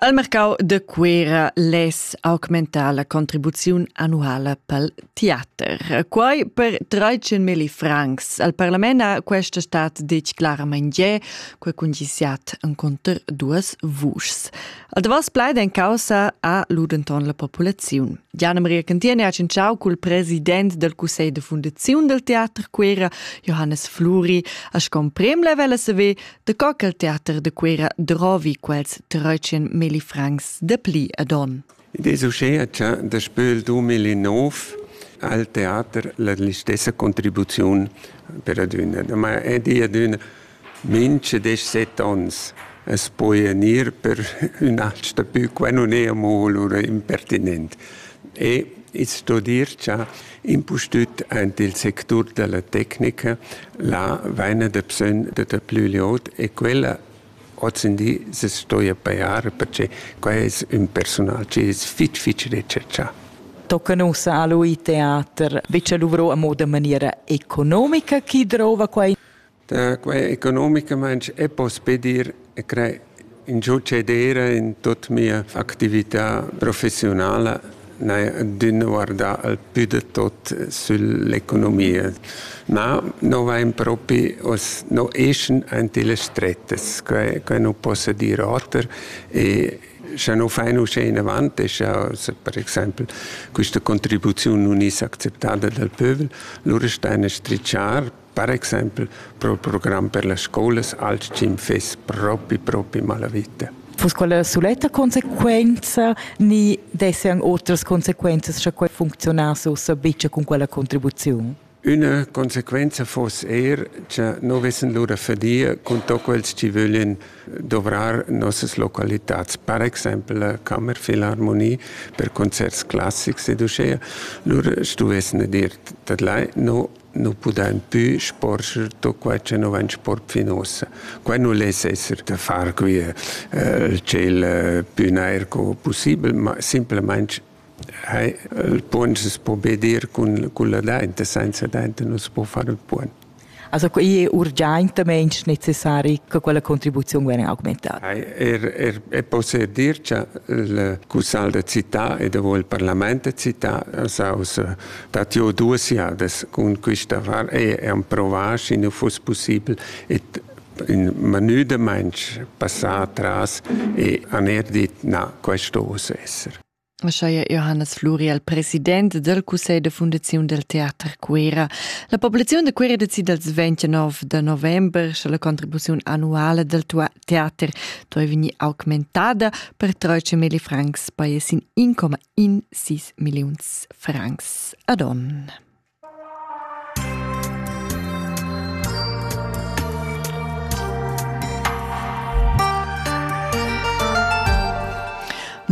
Al mercau de Cuera less augmentar la contribuziun annuala pel teater. Quai per 13.000 francs. Al parlament ha questa stat detg clarament ge, que cungissiat enconter duas vuschs. Al davos plaid en causa a ludenton la populaziun. Gianna Maria Cantiene ha cinciau cul president del Cussegl de Fundaziun del Teater Cuera, Johannes Fluri, a scomprem la vela se ve De co ch'el teater de Cuera drovi quels treutschen milli francs de pli ad on. Id es uschea cha daspö il 2009 al teater la stessa contribuziun per adüna. Ma è di adüna minche desch set ons as poja gnir per ün alch dapü, qua nun è amo lura impertinent. E its sto dir cha Impustüt aint il sectur da la tecnica là vaina dabsögn da daplü glieud e quella ozendi se stoja pajar perche quai es ün persunal chi es fich fich retscharchà. Tocan ussa a lui teater. Be cha luvro amo da maniera economica chi drouva quai? Da quei economicamaintg e pospe dir e crei ingiu cedera in tut mia actività professionala d'in guardar al più de tot sull'economia. Ma no vain propi, os no eschan ante le strettas, quai, quai nu possa dir oter e scha no fain uschè inavant e scha per exaimpel quista contribuziun nun es acceptada dal pövel, lura staina strichar Per exempel pro il program per las scolas alch-ch'im fess propi propi malavita. Vus quella suletta consequenza ni dessan otras consequenzas scha quei funcziunass ussa bicia cun quella contribuziun? Üna consequenza foss er, cha no vessen lura fadia cun to quels chi vöglien dovrar nossas localitats, per exempel la Kammerfilharmonie per concerts classics ed uschea, lura stuvessene dir tadlai, no nu pudain pü sporscher tuot quai cha nu vain sport fin uossa. Quai nu less esser da far quia il tschel pü nair co pussibel, ma simplamaing il puogn s'es po be dir cun culla dainta, sainza dainta nu s'po far ün puogn. Also i è urgiaintamaing necessari che quella contribuziun vegna augmentada. Er, er, e possè dir cha il cussal da città e davo il parlament da città s'ha ussa dat jo duas jadas cun quista val e emprovà, schi nu fuss pussibel. Et ün manüdamainch passà atras e han er dit, na, questo oss esser. Ascheia Johannes Fluri al president del Cussegl de Fundaziun del Teater Cuera. La populaziun de Cuera decide als 29 de november sche la contribuziun annuale del teater toi vegni augmentada per 13.000 francs, poi es in 1,1 in sis milliuns francs ad onn.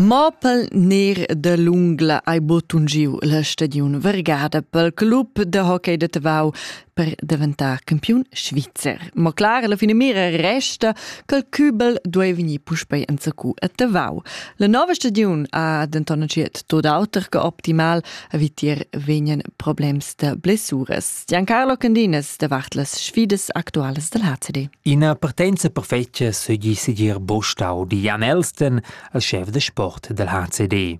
Mopel ner de l'ungla ei butungiu la stadiun vergada pel club de hockey de Tavau per daventar campiun svizzer. Ma clar, la finamira resta che il Kübel duai vegnir puspei enzacu a Tavau. La nova stagiun ha denton entschiet tot auter che optimal, a vitier vegnan problems da blessuras. Giancarlo Candinas davart las sfidas actualas dal HCD. Ina partenza perfetga seigi segir Bostau di Jan Elsten als chef de sport del HCD.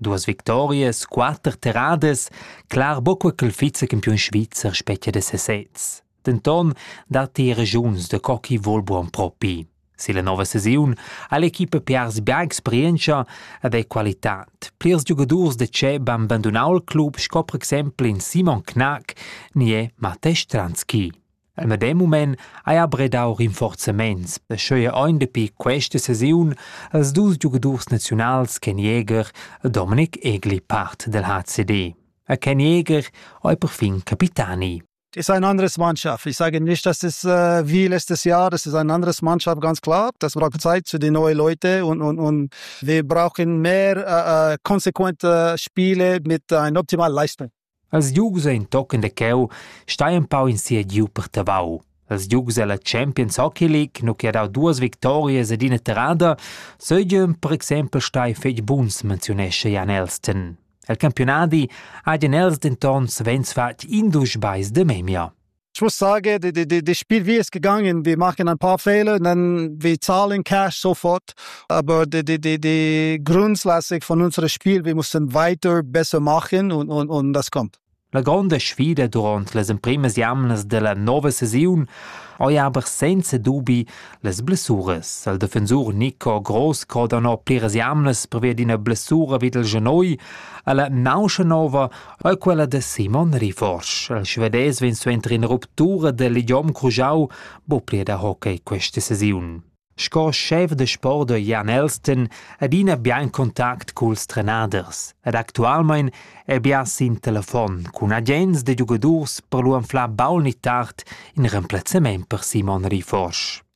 Duas victorias, quatter terradas, clar buca quel vizecampiun svizzer spetga da sesez. Denton datti regiuns da co chi vol buon propi. Silla nova sesiun ha l'equipa piars bia experientscha ed ei qualitad. Plirs giugadurs de Tscheb han bandunau il club sco per exempel in Simon Knack ni è Matej Stranski. El medem mument haja bredau rinforzaments da scheuer aunc dapi questa sesiun als dus giugadurs naziunals Ken Jäger e Dominik Egli part del HCD. A Ken Jäger ei perfin capitani. ist eine andere Mannschaft. Ich sage nicht, dass es äh, wie letztes Jahr, das ist eine andere Mannschaft, ganz klar. Das braucht Zeit für die neuen Leute und, und, und wir brauchen mehr äh, äh konsequente Spiele mit einer optimalen Leistung. Els giugs ein tochen da cheu stai empau in sia giu per Tavau. Els giugs ella Champions Hockey League, nu che ha dau duas victorias ed ina terrada, seigien per exempel stai fetg buns, menziunescha Jan Elston. El campionadi ha Jan Els denton savens fatg indusch beis de memia. Ich muss sagen, die, die, die Spielwiese ist gegangen, die machen ein paar Fehler, dann wir zahlen Cash sofort, aber die, die, die, die Grundlassung von unserem Spiel, wir müssen weiter besser machen und, und, und das kommt. La gronda sfida durant las emprimas jamnas della nova saisiun ei aber senza dubi las blessuras. Il defensur Nico Gross croda no pliras jamnas pervia d'ina blessura vid il genoi alla nauscha nova Eau quella da Simon riforsch. Il svedais vegn suenter ina ruptura del idiom crujau bo pli da hockey questa sesiun. Sco chef de sport da Jan Elston adina bien contact culs trenaders ed actualmein è bien sin telefon cun agents de giugadurs per lu anflar baul ni tard in remplazzament per Simon Riforsch.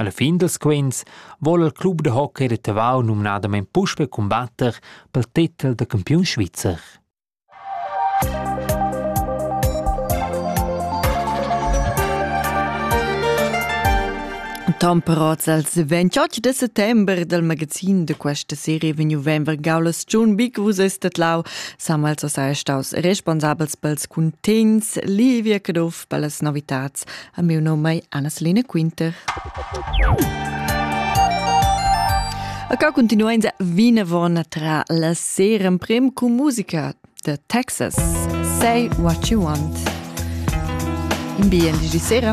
Alla fin dals quints vol il club da hockey da Tavau numnadamain puspè cumbatter pel titel da campiun svizzer. Temperats als 28 de settember dal magazin de questa serie vegnu venver gaulas Giun Bic vus estet lau Samuels ossa staus responsabels pels cuntins Livia Caduff per las novitats A miu nom ei Anna-Selina Quinter. A ca continuenza vinavon tra la sera prem cu musica da Texas. Say what you want. In bien di sera.